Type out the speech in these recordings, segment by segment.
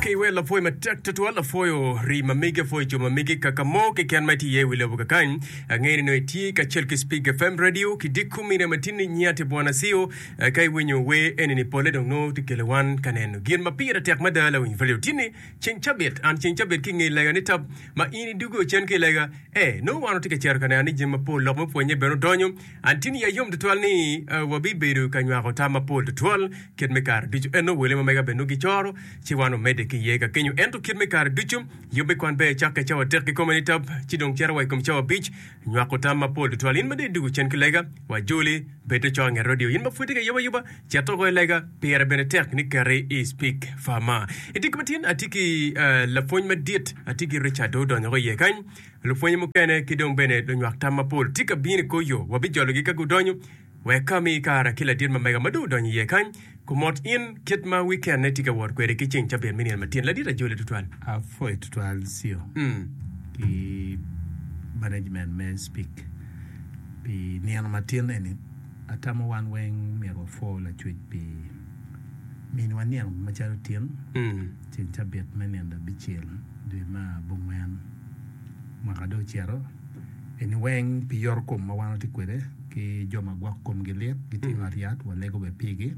Ki iwel lapwoyo matek tutwal, apwoyo rii ma megi, apwoyo co ma megi, kaka mo keken ma itye iye i wi lobo kakany. Angeyo ni nongo itye kacel ki Spig FM Radio ki Dikku Media ma tinni nyinga tye Bwana Ceo. Ka iwinyo wer eni-ni polle dong nongo tye kelo wan ka neno gin ma pire tek mada lawiny radio tinni ceng cabit. An ceng cabit ki i nge lega ni tap ma in idugge ocen ki i lega, ee nongo wan watye ka cito ka neno ni jami mapol lok me pwonye bene odonyo Antin ya yom tutwal ni wabibedo ka nywako tam mapol tutwal kit me kare ducu. Ento wele ma mega bene nongo gicoro, ci wan omedde ki iye ka kenyo. Ento kit me kare ducu, yub me kwan ber cakke cawa adek kikome nitab, ci dong cito wa i kom cawa abic. Nywako tam mapol tutwal. In ma deri duk ocen ki lega, wa joli, bed te coro nget radio. In ma pwod tye ka yub ayuba, cet oko i lega. Pire bene tek ni keti i Speak Far Mar. I tic matin, atye ki lapwony madit, atye ki Richard dong odonyo woko iye kany. Lupwonye mukene ki dong bene lunywak tam mapol tye ka bino i kor yo. Wabijologi ka gudonyo, wek ka mi kare ki ladit ma mega ma dong odonyo iye kany, kumot in kit ma wikenne tye ka wot kwede ki ceng cabit me nino matin. Ladit ajole tutwal. Apwoyo tutwal Ceo ki management me SPIC pi nino matin eni. Atamo wan weng myero wapwo Lacwec pi miniwa nino macalo tin ceng cabit me nino labicel dwe me abongwen. mwaka dong ocito eni weng pi yoto kom ma wan watye kwede ki jo ma gwok komgi lit gitye i ot yat walego bene pigi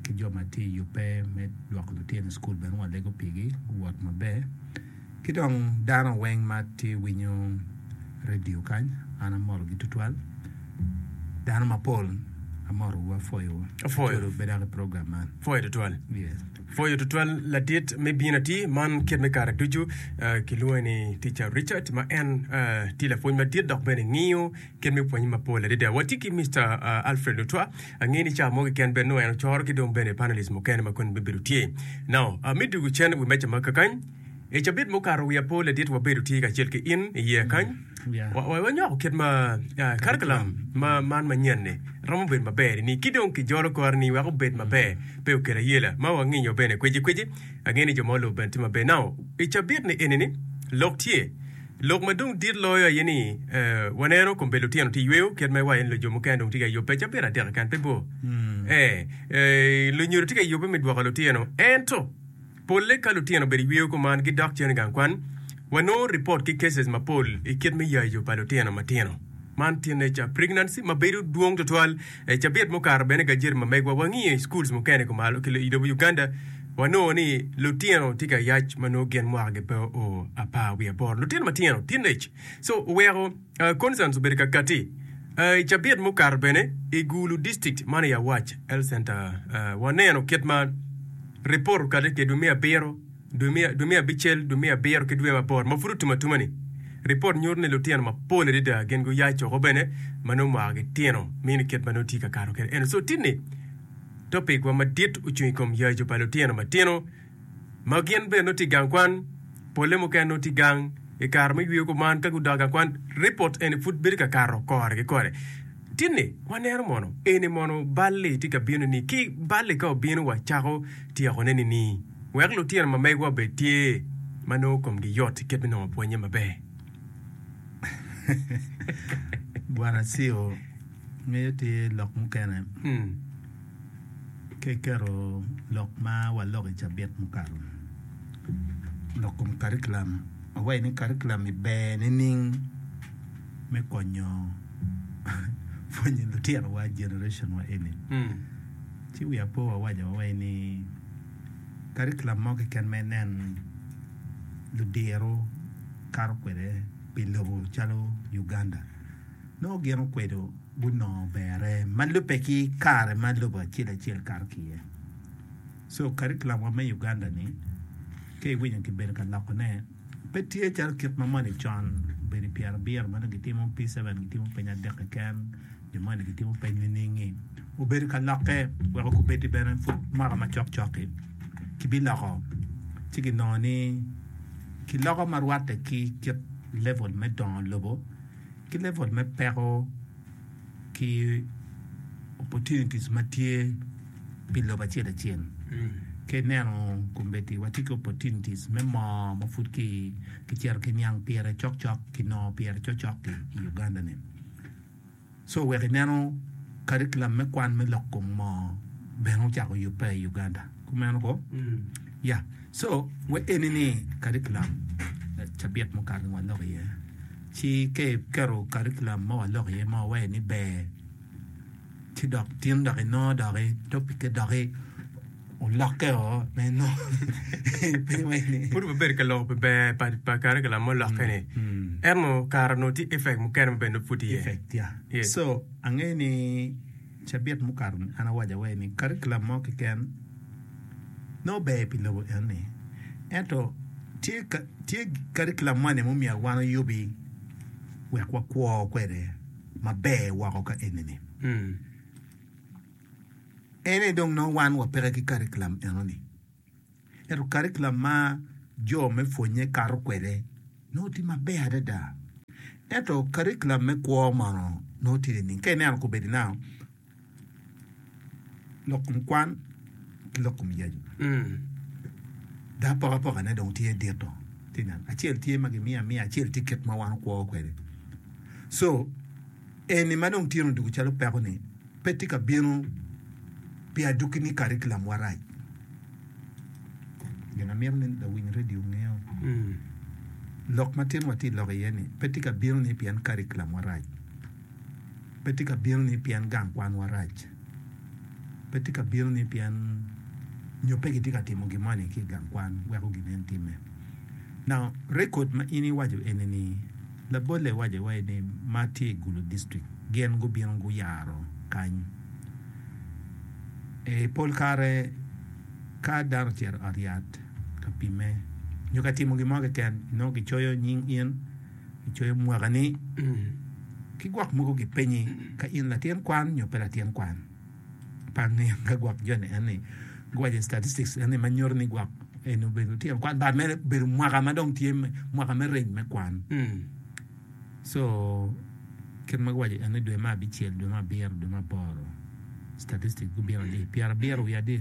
ki jo ma tye i yubbe me lwoko lutino i cukul bene walego pigi guwot maber ki dong dano weng ma tye winyo radio kany an amotogi tutwal dano mapol amotogi apwoyogi tutwal. Pwoyo tutwal ladit me bino atir man kit me kare ducu. Ah, Kilwonge ni Tica Richard ma en ah, tye lapwony madit dok bene ngiyo kit me pwonye mapol adada. Watye ki Mr. ah, Alfred Lutwa, angeyo ni cawa mo keken bene nongo en ocoro ki dong bene panelist mukene ma koni bibedo tye. Now, ah, me dwogo cen i wi meja ma kakany, I cabit mukato wi apo ladit wabedo tye kacel ki in i yeya kany. Wanyoko kit ma karikulam man manyen ni romo bedo maber ni ki dong ki jolo kore ni wek obed maber pe okel ayela ma wanginyo bene kweci kweci ange ni jo ma olubo bene tye maber now i cabit ni eni ni lok tye lok ma dong dit loyo aye ni waneno kombe lutino tye yweyo kit ma iwayo ni lujo mukene dong tye ka yubbe cabit adek keken pe bor ee lunyodo tye ka yubbe me dwoko lutino ento Polle ka lutino obedo iyweyo kuman gidok cen igang kwan, wanongo report ki cases mapol ikit me yayo pa lutino matino. Man teenager pregnancy mabedo dwong twatwal. I cabit mukato bene gajeti ma megwa wangiyo i schools mukene kumalo ki ilobo Uganda wanongo ni lutino tye ka yac manongo gin mwaka gi pe oo apar wiye aboro. Lutino matino, teenage. So oweko. Constance obedo ka kati i cabit mukato bene i Gulu dictict man i Awac Health Center. Waneno kit ma ripot okati kedwe me abiro, dwe me abicel, dwe me abiro ki dwe me apor ma pud otum atuma ni. Ripot nyuto ni lutino mapol adada gin guyac woko bene ma nongo mwaka gitino miyo ni kit ma nongo tye ka kato kede eno. So tini topic wa madit ocung i kom yaco pa lutino matino. ma gin bene nongo tye i gang kwan, polle mukene nongo tye i gang i kare ma giyweyo kuman. Ka gudok i gang kwan, ripot eni pud bedo ka kato kore ki kore. Tinni, waneno mono eni mono bal-li tye ka bino-ni? Ki bal-li ka obino, wacako tyekone nini? Wek lutino ma megiwa obed tye ma nongo komgi yot i kit me nongo pwonnye maber. Bwana Ceo, Ngeye tye lok mukene ki keto lok ma waloko i cabit mukato dok kom karikulam awaci ni karikulam ni ber nining me konyo pwonyo litinowa generation wa eni ci wiya pe wawaco awaci ni karikulam mo keken ma inen ludiro kato kwede pi lobo calo Uganda. nongo gin okwedo gunongo berre ma lubbe ki kare ma lobo acel acel kato ki iye. So curriculum wa me Uganda ni ka iwinyo kibedo ka loko ne pe tye calo kit ma moni con obedo i pyera abiro ma dong gitimo P7 gitimo piny adek keken jo moni gitimo piny niningi obedo ka lokke weko kubedi bene pud mwaka ma cok cok-ki kibiloko ci ginongo ni kiloko ma rwatte ki kit level me dongo lobo ki level me peko ki opportunities ma tye pi lobo acel acel ka ineno kombeddi watye ki opportunities me moo ma pud kicito ki niang pire cok cok kinongo pire cok cok i Uganda ni so wek ineno curriculum me kwan me lok kom moo bene ocako yubbe i Uganda. Kumeno ko. Ya. Co we eni ni curriculum cabit mukato ni walok iye. Ci ke keto curriculum ma walok iye ma wawaye ni ber, ci dok tin dok inongo doki topic-ke doki olokke o ma inongo pe iwaci ni. Pud wabedo ka loko pi ber pa, pa curriculum ma olokke-ni. Mm. Ento kare onongo tye effect mukene ma bene pud tye iye. Effect, ya. Yes. So, angeyo ni Cabit mukato-ni an awaco aweca ni karikulam mo keken nongo ber pi lobo enoni. Ento tye karikulam moni ma myero wan oyubi wek wakwo kwede maber woko ka enini? En aye dong nongo wan wapeke ki karikulam enoni. Ento karikulam ma jo me pwonnye kato kwede nongo tye maber adada. Ento karikulam me kwo mono nongo tye nining? Ka ineno kobedi nao lok kom kwan ki lok kom yacu. Dok apokapokane dong tye dito. Tye neno. Acel tye ma gimiyo amiya, acel tye kit ma wan okwo kwede. So, eni ma dong tyeno doko calo peko ni, pe tye ka bino pi aduki ni karikulam warac. Gin amito ni lawiny redio ongeo, lok ma tin watye loko iye ni pe tye ka bino ni pien karikulam warac, pe tye ka bino ni pien gang kwan wa rac, pe tye ka bino ni pien nyo pe gitye ka timo gin moni ki igang kwan weko gin nen time. Now record ma in iwaco eni ni, Labolle waco wa ni ma tye i Gulu District gin gubino guyaro kany. I pol kare ka dano ocito i ot yat ka pimme nyo ka timo gin mo keken nongo kicoyo nying in, kicoyo mwakani ki gwok mogo gipenyi ka in latin kwan nyo pe latin kwan. pa nino ka gwok joni en ni giwaco i statistics en ni ma nyuto ni gwok eni obedo tye kwan but mene obedo mwaka ma dong tye mwaka me reny me kwan so kit ma giwaco en ni dwe me abicel dwe me abiro dwe me aboro statistics gubino adi pyerabiro wiye adi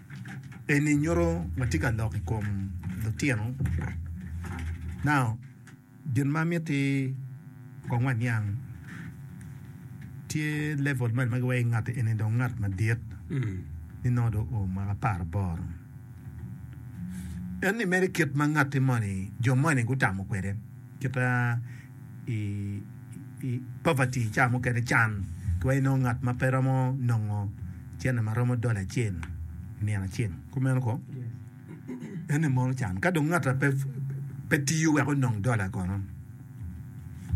Eni nyuto watye ka lok i kom lutino now gin ma miti kong waniang tye level ma gimaki wai ngati eni dong ngat madit ni nongo dong oo mwaka apar aboro en ni mere kit ma ngati moni jo moni gutamo kwede kita i poverty ca mukene can twero inongo ngat ma pe romo nongo cene ma romo dola acel i nino acel kumeno ko ene mono can ka dong ngat pe tiyo wek onong dola kono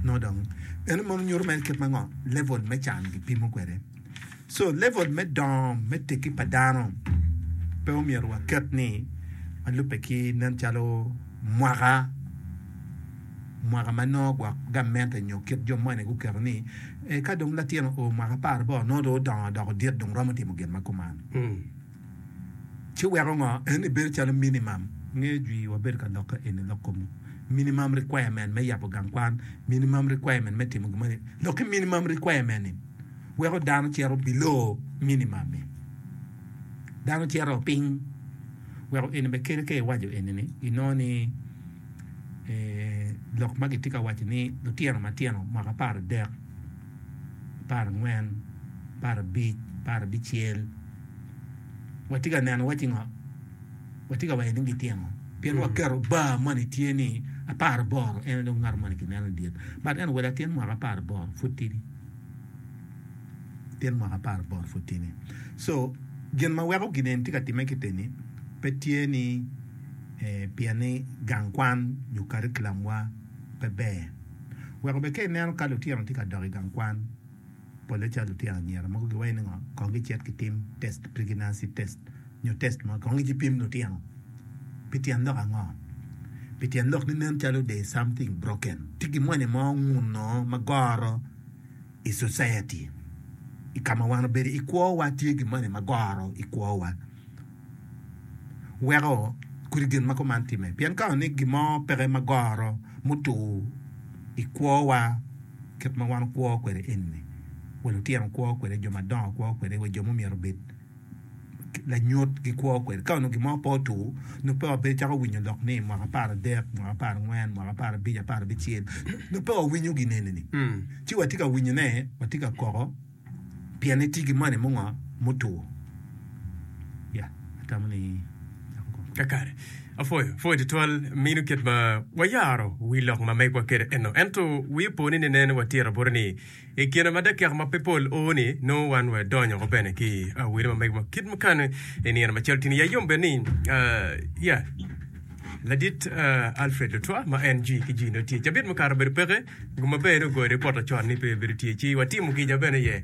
nongo dong ene mono nyuto kit mango level me can kipimo kwede. So level me dongo me tekki pa dano pe omyero waket ni ma lubbe ki nen calo mwaka mwaka ma nongo gwok gamente nyo kit jo moni guketo ni ka dong latin oo mwaka apar boro nongo dong odongo odoko dit dong romo timo gin ma kuman. Ci weko ngo en ibedo calo minimum. Nge jwi wa bedo ka lokke eni lok kom minimum requirement me yabo gang kwan, minimum requirement me timo gimoni. Lok ki minimum requirement in weko dano cito below minimum in. Dano cito piny weko eni be kele ka iwaco eni ni inongo ni lok ma gitye ka waco ni lutino matino mwaka apar adek. apar angwen, apar abic, apar abicel, watye ka neno waci ngo? watye ka waco ni gitino pien waketo bar moni tye ni apar aboro en aye dong ngat moni ki neno idyere but anyway latin mwaka apar aboro pud tidi latin mwaka apar aboro pud tidi so gin ma weko gin eni tye ka timme kite ni pe tye ni pien ni gang kwan nyo karikulam wa pe ber Wek obed ka ineno ka lutino tye ka dok i gang kwan, polle calo lutino anyira mogo giwaci ni ngo, kong gicit gitim test, pregnancy test, nyo test mo kong gipim lutino. Pi tyen lok ango? Pi tyen lok ni nen calo there is something broken, tye gin moni mo ongun onongo ma goro. i society i kama wan obedo i kwo wa tye gin moni ma goro i kwo wa weko kodi gin ma kuman time pien ka ni gin mo peke ma goro mutur i kwo wa kit ma wan okwo kwede eni wa lutino kwo kwede jo madongo kwo kwede wa jo ma myero obed. lanyut gikwo kwede ka onongo gin mo pe otur nongo pe wabedo cako winyo lok ni mwaka apar adek mwaka apar angwen mwaka apar abic apar abicel nongo pe wawinyo gin eni ni ci watye ka winyo ne watye ka koko pien ni tye ki moni mungo mutur ya atamo ni cako kong Kakare. Apwoyo, pwoyo tutwal minu kit ma wayaro wi lok ma megwa kede eno. Ento wi po ni nenen watira bute ni I kine ma dakika ma pe pol oo-ni, nongo wan wadonyo ko bene ki awele ma mege ma kit mukane i nino macalo tini. Ya yom bed ni, ya, Ladit Alfred Lutwa ma en jwi ki jwi nongo tye. Cabit mukato obedo peke, gum maber-ni ogoyo ripot lacon-ni pe obedo tye, ci watimo kica bene iye.